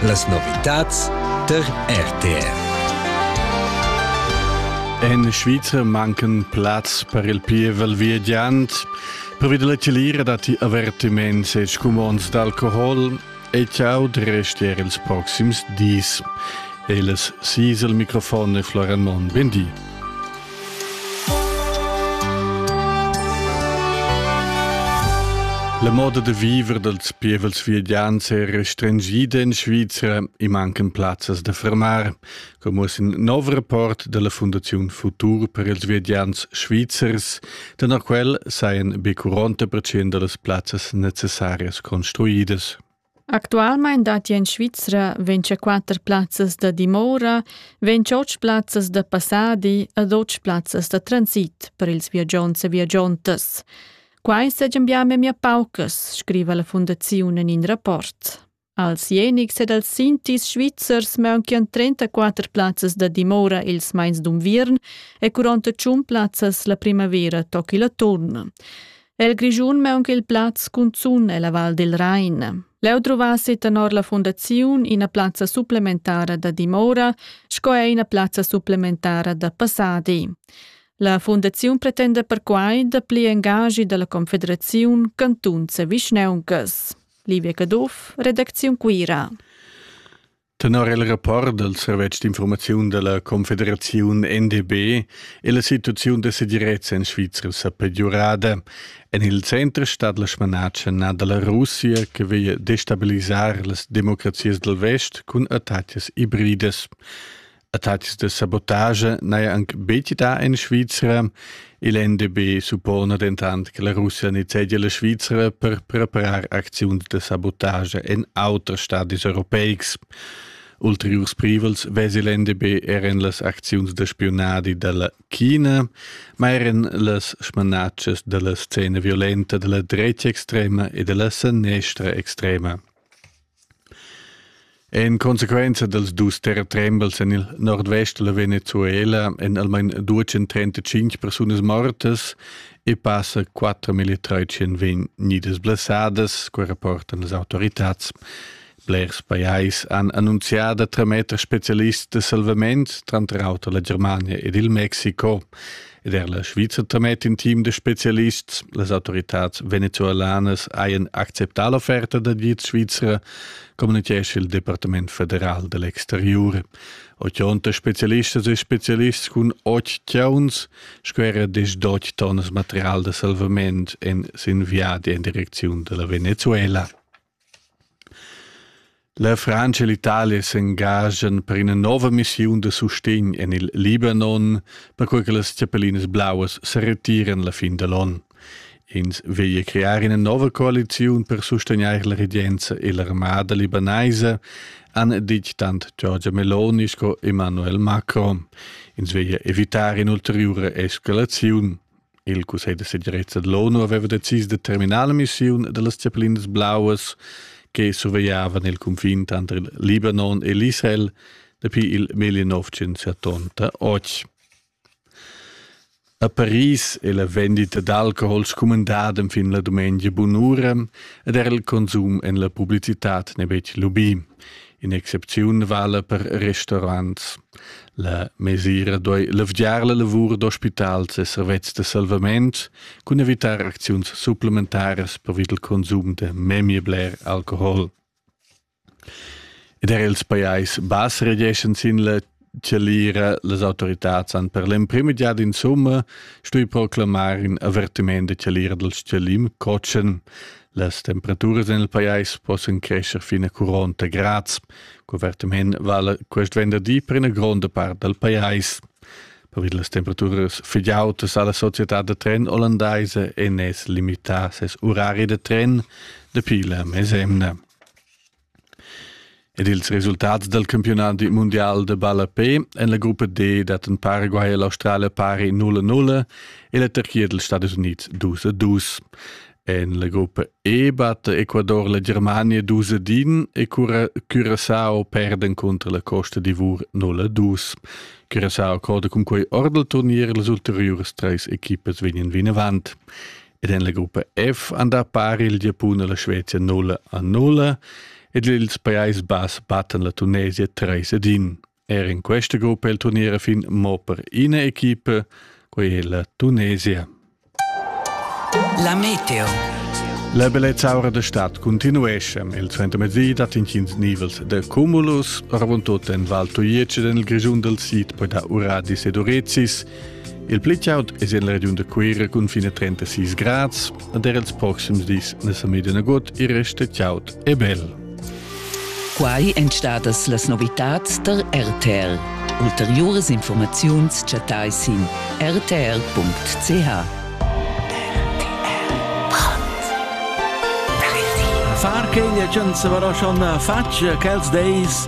Las novitads der RTR. En Schweizer mancan plaz per il pievel viagiant. Provi della celira dati avertiments e scumonds d'alcohol e ciao de restier ils proxims dis. Eles sis il microfon e Florian Mon, ben di. La moda da viver dals pievels viedians è restringida in Svizra e mancan plazzas da fermar, come es in nov rapport della Fundaziun Futur per ils viedians svizzers, denn a quel sajan be 40% das Plazzas necessarias construidas. Actualmein datti en Svizra vintschaquatter plazzas da dimora, ventschotg plazzas da passadi ed otg plazzas da transit per ils viagiants e viagiantas. Quai segian bia memia paucas, scriva la fundaziun en in rapport. Als Jenics ed als Sintis svizzers manchian 34 plazzas da dimora ils mais d'unviern e 48 plazzas la primavera toc il atturn. El Grischun maunch'il plaz cunzun ella Val del Rain. Leu druvassi tenor la fundaziun ina plazza supplementara da dimora sco er ina plazza supplementara da passadi. La fundaziun pretenda perquai dapli engagi dalla Confederaziun Cantun Vischneuncas. Livia Caduff, Redakziun Cuira. Tenor il rapport dal servetsch d'informaziun da la Confederaziun NDB è la situaziun da segirezza en Svizra sa pegiurada. En il center stat la smanatscha nà da la Russia che veglia destabilisar las democrazias dal vest cun attacas ibridas. Attacks da sabotage n'haja anc betg dà en Svizra. Il NDB suppona dentant che la Russia nizzegia la Svizra per preparar acziuns da sabotage en auters stadis europeics. Ulteriurs privels vesi l'NDB er en las acziuns da spiunadi da la China, ma er en las smanatschas da la scena violenta da la drecha extrema e da la sanestra extrema. En consequenza dals dus terretrembels en il nordvest dalla Venezuela èn almain 235 persunas mortas e passa 4.300 vegnidas blessadas, quai rapportan las autoritads. Blers pajais han annunzià da trametter spezialists da salvament, tranter auter la Germania ed il Messico. Ed er la Schweizer tamet in team de specialists. Las autoritats venezuelanas haien acceptà l'offerta da diet Svizra, communichesce il Departement federal dell'exteriore. Ochonta specialistas e specialists cun och chiauns, sco era des doc tonnas material de salvament en sin viadi en direcziun della Venezuela. La Frantscha e l'Italia s'engaschan per ina nova missiun da sustegn en il Libanon, perquai che las chapellinas blauas sa retiran la fin da l'onn. Ins veglia crear ina nova coaliziun per sustegnair la regenza e l'armada libanaisa, han ditg tant Giorgia Meloni sco Emmanuel Macron. Ins veglia evitar in'ulteriura escalaziun. Il cussegl da segirezza da l'ONU aveva decis da terminar la missiun da las zeppelinas blauas che survegliavan il cunfin tanter il Libanon e l'Israel dapi il 1988. A Paris è la vendita d'alcohol scumandada fin la dumengia bunura ed era il consum en la publicitad n'è betg lubì. In'excepziun vala per restaurants. La mesira duei levgiar la lavur d'ospitals e servetschs da salvament cun evitar acziuns supplementaras pervia dal consum da memia bler alcohol. Ed er ils pajais bass regeschan sin la chalira las autoritads han per l'emprima giada insumma stui proclamar in avertiment da chalira dal chalim cotschen. Las temperaturas en il pajais possan crescer fin a 40 grads. Cuvertament vala quest venderdi per ina gronda part dal pajais. Per las temperaturas fitg autas ha la società da tren olandaisa ENES limità ses urari da tren dapi la mesemna. Ed ils resultats dal campiunadi mundial da ballapè en la gruppa D dattan Paraguay e l'Australia pari 0-0 e la Turchia dals Stadis Unids 2-2. En la gruppa E batta Ecuador la Germania 2-1 e Curaçao perda cunter la Costa d'Ivor 0-2. Curaçao croda cun quei ord il turnier las ulteriuras treis equipas vegnan vinavant. ed en la gruppa F han da par il Giapun e la Svezia 0 a 0 ed ils Prais Bass battan la Tunesia 3 ad 1. Er in questa gruppa è il turnier a fin mo per ina equipa, quella è la Tunesia. La Meteo. La bellezzaura da stad continuesce. Il suentermezzi dat intgins nivels de cumulus, ravon tot en Val Tuiec ed en il Grigiun del Sid poi da Uradis ed Urecis, Il pli chaud es in la regiun da Cuira cun fine 36 grads ed er ils proxims dis na sa media nagut e resta chaud e bel. Quai èn stadas las novitads tar RTL. Ulteriuras informaziuns chattai sin rtl.ch. Far che l'agenza però schon faccia quels days